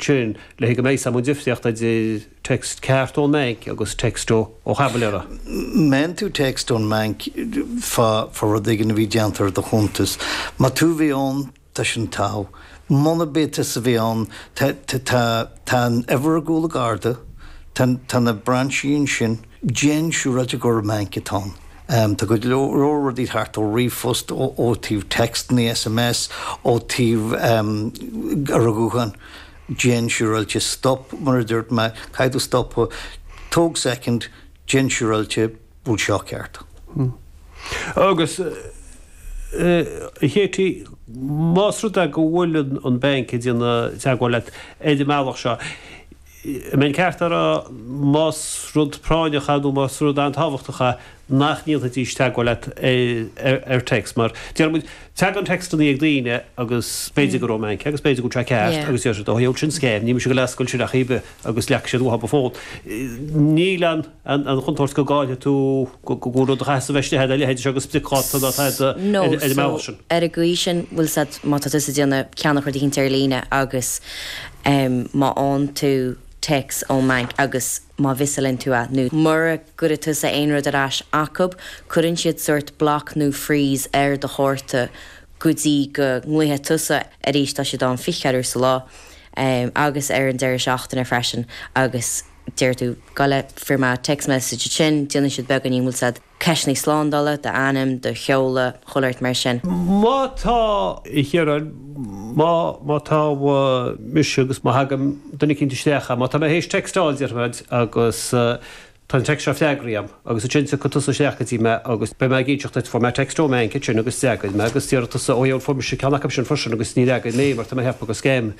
sin le haghaidh aim an difear idir text ceart ón mBanc agus text ó tháibléir má fhaigheann tú text ón mBanc fá fá rud éigin a bhí déanta ar do chuntas. Má tú a bhí ann, tá sin togha. Munarb é tusa a bhí ann, tá tá tá tá an uimhir ar chúl an chárta, tá tá na brainsí ansin, Déan siúráilte gurb é an banc atá ann. Tá go leor rudaí thart ó ríomhphost, ó taobh textannaí, SMS, ó taobh an ghutháin. Déan siúráilte. Stop mar a dúirt mé. Caithfidh tú stopadh. Tóg soicind. Déan siúráilte. Bhfuil seo ceart? Agus, a Kheití, más rud é go bhfuil an banc ag déanamh teagmháil leat ar an mbealach seo, an mbeinn ceart a rá más rud práinneach é nó más rud an-tábhachtach é nach ndéanfaidís teagmháil leat ar text mar déarfaidh muid, tagann textanna ag daoine agus b'fhéidir gur ón mbanc agus b'fhéidir go bhfuil sé ceart agus deir siad 'ó geall sin scéim, ní mise ag dul ag oscailt sin ar chaoi ar bith agus leagfaidh siad uathu an fón'. Níl an. an chontúirt go gcaillfidh tú gach rud a chaitheas a bheith istigh agat, a leithéid seo de spriocdháta nó atá agat ar an mbealach sin. Ar an gcaoi sin, bhfuil a fhios agat, má tá tusa ag déanamh ceannach rud eicínt ar líne agus má fhánn tú téacs ón mbanc agus má mhissálann tú a, nó mura gcuireann tusa aon rud ar ais acub, cuireann siad sórt block nó freeze ar do chárta go dtí go nglaofaidh tusa arís, tá siad ann fiche ceathair uair sa lá agus ar an deireadh seachtaine freisin agus. deir tú, go bhfuair mé text message, ansin déanann siad beagáinín, bhfuil a fhios agat, ceisteannaí slándála, do ainm, do sheoladh, chuile shórt mar sin. Má tá, a Chiaráin, má, má tá mise agus má thagann duine eicínt isteach agam, má tá mé théis textáil, déarfaidh mé, agus tá an text seo freagraithe a'm, agus ansin tiocfaidh tusa isteach go dtí mé agus beidh mé ag inseacht duit, fuair mé text ón mbainc ansin agus d'fhreagair mé agus déarfaidh tusa, ó yeah, bhuel fuair mise ceann acub sin freisin agus níor fhreagair mé mar tá mé ag ceapadh gur scéim,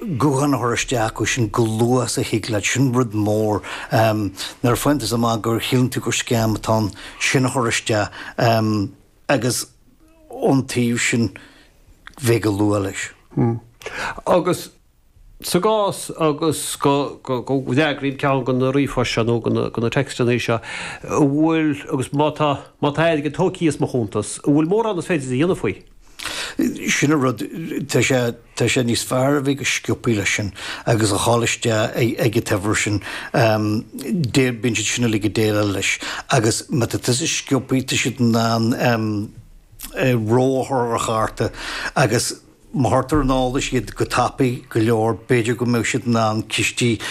guthán a chur isteach acu chomh luath is a thig leat, sin rud mór. Nuair a fhaigheann tú amach go síleann tú gur scéim atá ann, sin a chur isteach agus ón taobh sin bheith go luath leis. Agus sa gcás agus go bhfreagraím ceann de na ríomhphoist seo nó de na textannaí seo, an bhfuil, agus má tá, má tá airgead tógtha as mo chuntas, an bhfuil mórán is féidir a dhéanamh faoi? Sin an rud, tá sé. Tá sé níos fearr a bheith go sciopaí leis sin agus a dhul isteach ag an dream sin. Bíonn siad sin uilig ag déileáil leis agus má tá tusa sciopaí tá siad in ann reo a chur ar an chárta agus má thugtar ar an eolas iad go tapaidh go leor b'fhéidir go mbeidh siad in ann cistí